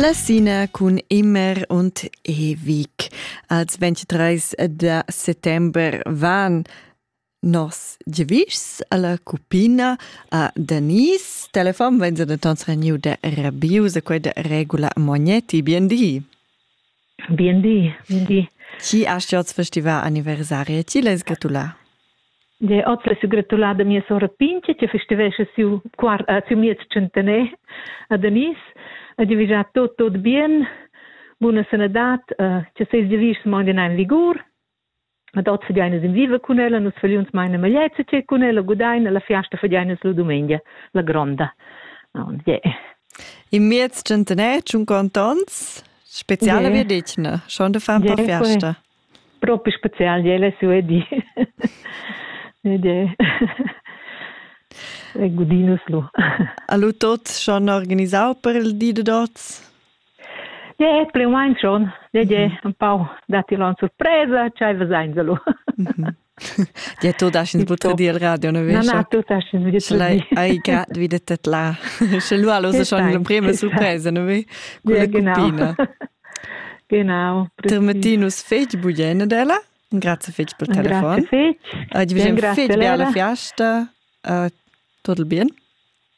La Sina cun Immer und ewig. Als 23 de settember van nos giavischs alla cupina a Denise. Telefon venza de tons reniu de Rabius, quei de regula Mognetti. Bien di. Bien di, bien di. Chi hast ti oz festivà anniversari e ti l'has gratulà? Ja, oz l'hai gratulà da mia sora Pinche, che festivescha siu, quart, uh, siu miez centener a Danis. E die wünsche tot, tot bien, buna sanadad, uh, che seis devischs mangen ein vigur Ad hoz fagein in viva cun ella, nus fagiuns maina magliets e cun ella gudain la fiasta fagein nus la dumengia, la gronda. Yeah. In miez centener, cinquanta ons, spezial yeah. wir dich, ne? Schon de far yeah, fiasta. Proprio spezial, je le sue di. yeah. Gudinus lu. A lu tot schon organisau per il di de dots? Ja, et pli u main schon. Leger empau datti lon surpresa, ch'ei vesainsa lu. Dir tu daschens butter dir radio ne Na na tu daschens butter dir. Ai grad wie det dat la. Sche lu allo schon l'emprema surpresa, ne ve? Quella cupina. Genau. Termetinus fetg bugene della. Grazie fetg per telefon. Grazie fetg. Oggi vediamo fetg bella fiesta. Uh, tot il bien.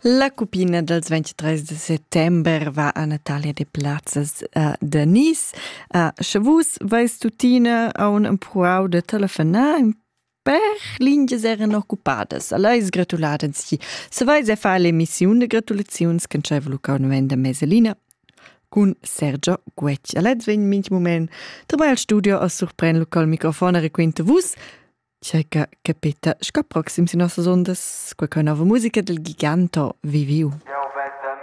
La cupina dels 23 de settember va a Natalia de Plazzas uh, de Nice. Uh, sche vus vais tuttina a un empruau de telefonar per lingias eran occupadas. Alla is gratulada si. Se vais a fare l'emissione de gratulazioni che c'è voluta un venda meselina cun Sergio Guec. Allez vegn minch moment. Dabei al studio a surpren local microfon e requinte vus C'è capita sco proxim sin nossas ondas qualche nuova musica del giganto Viviu?